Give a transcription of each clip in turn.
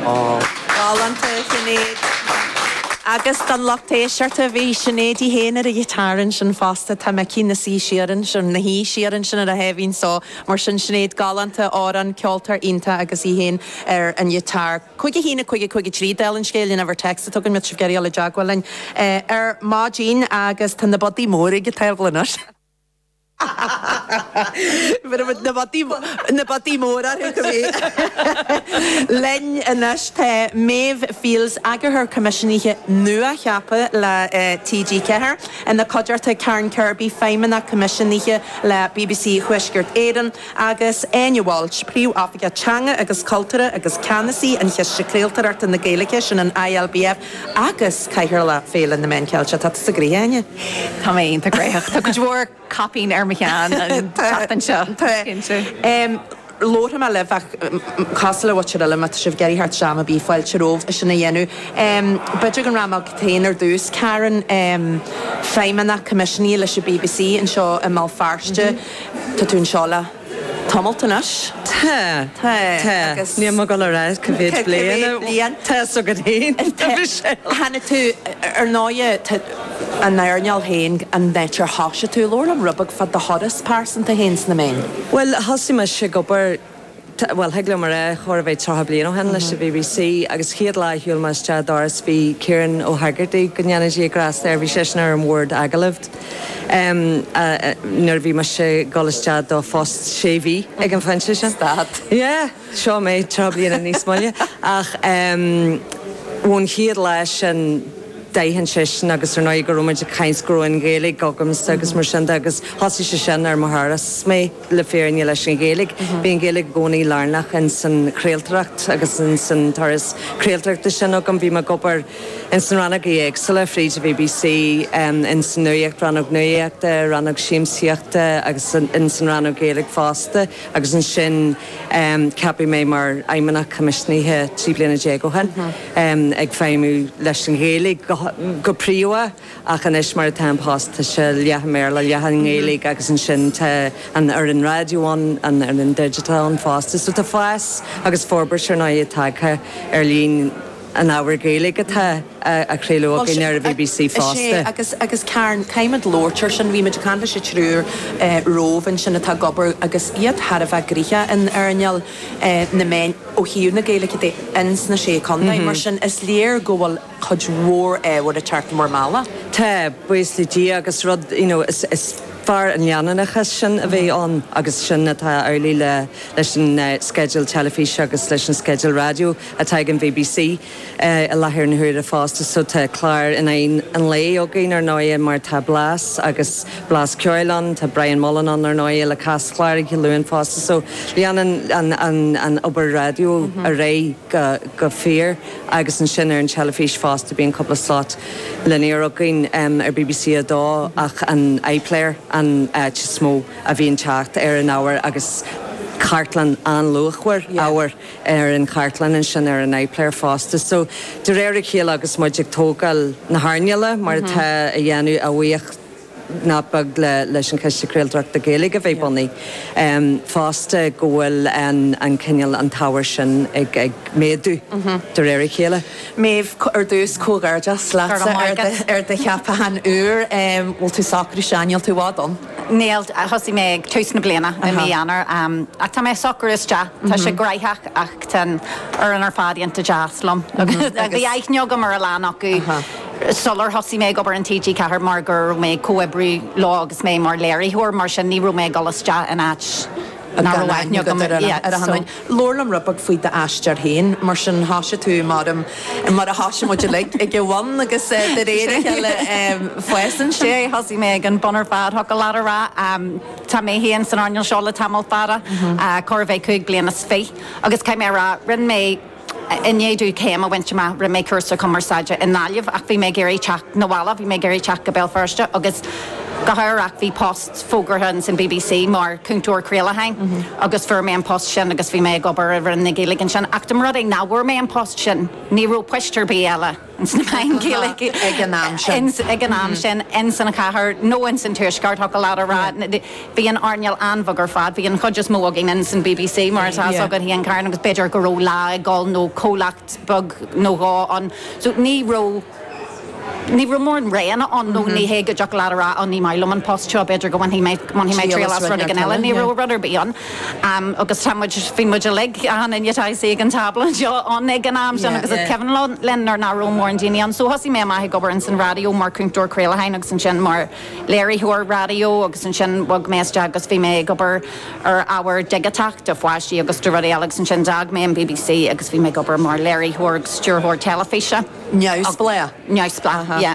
Galánta, a Shinéad. Agus don lucht éisteachta, bhí Sinéad í féin ar an ghiotár ansin fosta, tá mé cinnte. Luigh siar ansin, luigh siar ansin ar a sháimhín só. Mar sin, Sinéad galánta, amhrán, ceoltóir iontach agus í féin ar an ghiotár. Cúig a haon a cúig a cúig a trí, Dála an scéil, an uimhir text againn, má tá sibh ag iarraidh a ghabháil i dteagmháil linn ar maidin agus tá na bataí móra ar an tábla linn anois. Na bataí móra orthu go minic. Linn anois tá Máire Fields, Eagarthóir Coimisiúnaithe nua-cheaptha le TG4, ina cuideachta, Karen Kirby, Feidhmeannach Coimisiúnaithe le bbc Thuaisceart Éireann, agus Áine Walsh, Príomhoifigeach Teanga agus Cultúra agus Ceannasaí an Chiste Craoltóireachta na Gaeilge, sin an ILBF, agus Cathaoirleach Féile na Meán Ceilteach. Tá tusa gnoitheach, a Áine! Tá mé iontach gnoitheach. Tá cuid mhór caipín ar mo cheann an tseachtain seo, is cinnte. Labharfaidh mé libh uilig cosúil leat, ar ndóigh, ach má tá sibh ag iarraidh teacht isteach am ar bith, fáilte romhaibh é sin a dhéanamh. B'fhéidir go rachaidh muid chugat féin ar dtús. Karen, Feidhmeannach Coimisiúnaithe leis an BBC anseo i mBéal Feirste. Tá tú anseo le tamallt anois. Tá. Tá. Tá. Agus. Níl mé ag dul ar ais cá mhéad bliain a. Bliain. Tá 's agat fhéin, a Mhichelle. Tháinig tú, ar ndóighe, ón earnáil fhéin, an áit ar thosaigh tú, labhair liom rud beag fá do thuras pearsanta fhéin sna méain. Bhuel, thosaigh mise ag obair. T, Bhuel, thig liom a rá, chóir a bheith tríocha bliain ó shin anois a bhí mé, BBC, agus chéad lá a shiúil mé isteach doras bhí Kieran Ó hEagartaigh, go ndéana Dia grásta air, bhí seisean ar an bhord agallaimh em nuair a bhí mise a' dhul isteach do phost sé mhí ag an phointe sin. Stad. Yeah, seo mé tríocha bliana níos moille ach em ón chéad lá sin d'aithin seisean agus ar ndóigh go raibh muid ag caint go raibh an Ghaeilge agamsa agus mar sin de agus thosaigh sé sin ar mo thuras mé. le fírinne leis an Ghaeilge. Bhí an Ghaeilge i gcónaí lárnach ins an chraoltóireacht agus ins an turas craoltóireachta sin agam. Bhí mé ag obair ins na rannógaí éagsúla fríd an bbc, ins an nuaíocht, rannóg nuaíochta, rannóg siamsaíochta agus ins an rannóg Ghaeilge fosta agus ansin ceapadh mé mar fheidhmeannach coimisiúnaithe trí bliana déag ó shin, ag feidhmiú leis an Ghaeilge go príomha. Ach anois, mar atá an post, tá sé leath i mBéarla, leath i nGaeilge agus ansin tá an fhoireann raidió ann, an fhoireann digiteach ann fosta. So tá fás agus forbairt, ar ndóigh, tagtha ar líon an ábhair Ghaeilge atá á chraoladh againn ar an bbc fosta. Sea, agus Karen, caithfimid labhairt air sin, bhímid ag caint leis an triúr romhainn ansin atá ag obair agus iad thar a bheith gnoitheach in earnáil na meán ó thaobh na Gaeilge de ins na Sé Contae, mar sin is léir go bhfuil cuid mhór ábhair a tearc mar mhála. Tá, buíochas le Dia, agus rud, you know, is, is fearr an leanúnachas sin a bheith ann agus sin atá amhlaidh le, leis an sceideal teilifíse agus leis an sceideal raidió atá ag an bbc i láthair na huaire fosta, so tá clár in aghaidh an lae againn ar ndóiche mar tá Blas agus Blas Ceoil ann, tá Brian Mullen ann ar ndóiche le Caschláir oíche Dé Luain fosta so leanann an, an, an obair raidió ar aghaidh. go go fíor agus ansin ar an teilifís fosta bíonn cúpla slot linear againn ar bbc 2 ach an iPlayer an áit is mó a bhíonn teacht ar an ábhar agus cartlann an-luachmhar ábhair ar an chartlann ansin ar an iPlayer fosta so de réir a chéile agus muid ag tógáil na hearnála mar atá á dhéanamh, a bhuíoch nach beag leis an Chiste Craoltóireachta Gaeilge a bheith bunaithe fosta, go bhfuil an cineál, an t-ábhar sin ag méadú de réir a chéile. Méabh, ar dtús, comhghairdeas leatsa ar do cheapachán úr. Bhfuil tú socraithe isteach, níl tú i bhfad ann? Níl, thosaigh mé ag tús na bliana, i mí Eanáir, ach tá mé socraithe isteach. Tá sé graitheach ach tá an fhoireann ar fad iontach deas liom agus bhí aithne agam ar a lán acu. sular thosaigh mé ag obair in TG4 mar go raibh mé ag comhoibriú leo agus mé mar léiritheoir, mar sin ní raibh mé ag dul isteach in áit nach raibh aithne agam ar achan nduine. Labhair liom rud beag faoi d'aistear féin, mar sin thoisigh tú mar a thoisigh muid uilig, ag a bhun agus de réir a chéile fásann sé. Sea, thosaigh mé ag an bun ar fad, thiocfadh leat a rá. Tá mé féin san earnáil seo le tamall fada, chóir a bheith cúig bliana is fiche, agus caithfidh mé a rá, rinne mé, I ndiaidh domh céim a bhaint amach, rinne mé cúrsa cumarsáide i nGaillimh ach bhí mé ag iarraidh teacht 'na bhaile, bhí mé ag iarraidh teacht go Béal Feirste agus go hádhúil bhí post fógartha ins an BBC mar chúntóir craolacháin agus fuair mé an post sin agus bhí mé ag obair i Roinn na Gaeilge ansin ach dá mba rud é nach bhfuair mé an post sin, ní raibh poist ar bith eile. i nGaeilge ag an am sin, ins an chathair nó ins an tuaisceart, thiocfadh leat a rá. Bhí an earnáil an-bheag ar fad, bhí an chuid is mó againn ins an BBC, mar atá 's agat fhéin, Karen, agus b'fhéidir go raibh Lá ag dul nó comhlacht beag nó dhó ann. So ní raibh, ní raibh mórán roghanna ann nó ní hé go dtiocfadh leat a rá, á ní maith liom an post seo, b'fhéidir go mbainfidh mé, bhainfidh mé triail as rud éigin eile, ní raibh rud ar bith ann. Am, agus tá muid, bhí muid uilig, achan nduine atá istigh ag an tábla seo, ann ag an am sin, agus is cuimhin linn nuair nach raibh mórán daoine ann. So thosaigh mé amach ag obair ins an raidió mar chúntóir craolacháin agus ansin mar léiritheoir raidió agus ansin bhog mé isteach agus bhí mé ag obair ar ábhar digiteach do pháistí agus do rudaí eile agus ansin d'fhág mé an BBC agus bhí mé ag obair mar léiritheoir agus stiúrthóir teilifíse. Neamhspleách? Neamhspleách, yeah.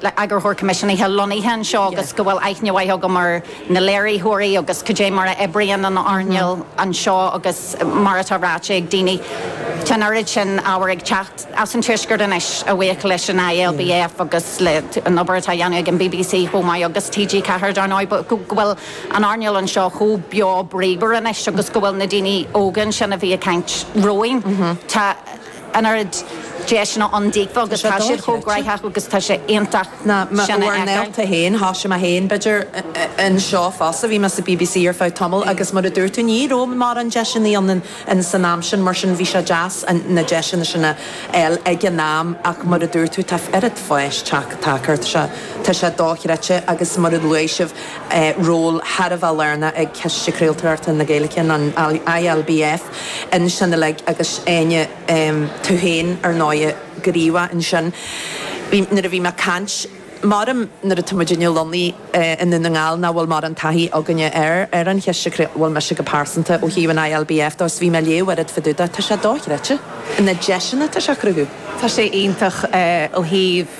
le hEagarthóir Coimisiúnaithe lonnaithe anseo agus go bhfuil aithne mhaith agam ar na léiritheoirí agus cad é mar a oibríonn an earnáil anseo agus mar atá ráite ag daoine, tá an oiread sin ábhair ag teacht as an tuaisceart anois a bhuíochas leis an ILBF agus le an obair atá á dhéanamh ag an bbc chomh maith agus TG Ceathair dar ndóigh, go bhfuil an earnáil anseo chomh beo bríomhar anois agus go bhfuil na daoine óga ansin a bhí ag caint romhainn, tá. an oiread deiseanna ann daofa agus tá siad chomh gnóthach agus tá sé iontach sin a fheiceáil. Tá sé dochreidte. Tá bhur scéalta féin. Thosaigh mé féin, b'fhéidir, anseo fosta. Bhí mé sa BBC ar feadh tamaill agus mar a dúirt tú, ní raibh mórán deiseanna ann san am sin, mar sin bhí sé deas na deiseanna sin a fháil ag an am ach mar a dúirt tú, tá oiread fáis tagtha air. Tá sé dochreidte agus mar a luaigh sibh, ról thar a bheith lárnach ag Ciste Craoltóireachta na Gaeilge, an ILBF, ansin uilig agus Áine, tú féin ar ndóigh go raibh maith ansin. Bhí, nuair a bhí mé ag caint, b'fhéidir nuair atá muid inár gcónaí i nDún na nGall nach bhfuil mórán taithí againne air, ar an Chiste Cre, bhuel mise go pearsanta ó thaobh an ILBF dó is bhí mé ag léamh oiread fá dtaobh dó, tá sé dochreidte na deiseanna atá sé a chruthú. Tá sé iontach ó thaobh.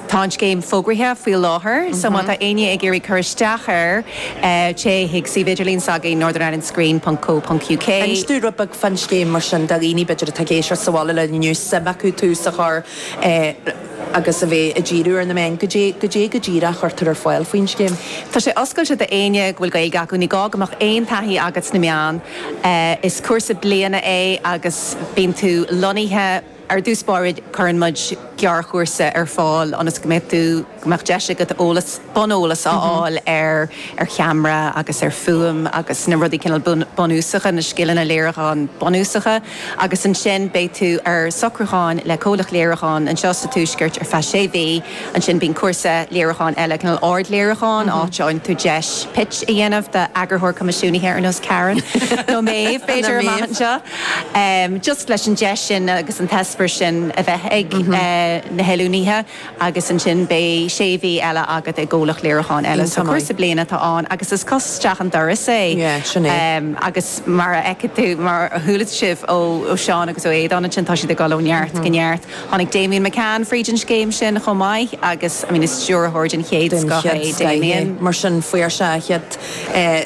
Tá an scéim fógraithe faoi láthair so má tá éinne ag iarraidh cur isteach air, téigh chuig suíomh idirlín s'againn, northernirelandscreen ponc co ponc uk. Inis dúinn rud beag fán scéim mar sin, do dhaoine b'fhéidir atá ag éisteacht sa bhaile linn inniu, suim acu tús a chur agus iad a bheith ag díriú ar na meáin, goidé, goidé go díreach a chuirtear ar fáil faoin scéim? Tá sé oscailte do éinne go bhfuil Gaeilge acu, ní gá go mbeadh aon taithí agat sna meáin, is cúrsa bliana é agus bíonn tú lonnaithe, Ar dtús báire cuireann muid gearrchúrsa ar fáil ionas go mbeidh tú, go mbeadh deis agat eolas, buneolas a fháil ar ar cheamara agus ar fuaim agus na rudaí cineál bunúsacha, na scileanna léiriúcháin bunúsacha. Agus ansin beidh tú ar socrúchán le comhlacht léiriúcháin anseo sa tuaisceart ar feadh sé mhí, ansin bíonn cúrsa léiriúcháin eile, cineál ardléiriúcháin, áit a fhaigheann tú deis pitch a dhéanamh d'eagarthóir coimisiúnaithe ar nós Karen nó mé féin b'fhéidir amach anseo. just leis an deis sin agus an t-eispéireas sin a bheith ag na hoiliúnaithe agus ansin beidh sé mhí eile agat i gcomhlacht léiriúcháin eile, so cúrsa bliana atá ann agus is cos isteach an doras é agus mar a fheicfidh tú, mar a chuala sibh ó Sheán agus ó Aodhán ansin, tá siad ag dul ó neart go neart. Tháinig Damian McCann fríd an scéim sin chomh maith agus is stiúrthóir den chéad scoth é Damian. Mar sin, fuair sé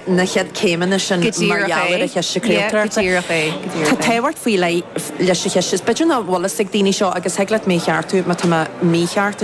na chéad céimeanna sin mar gheall ar an Chiste Craolta. Go díreach é. Tá tábhacht faoi leith leis an Chiste. B'fhéidir nach bhfuil fhios ag daoine seo agus thig leat mé a cheartú má tá mé mícheart.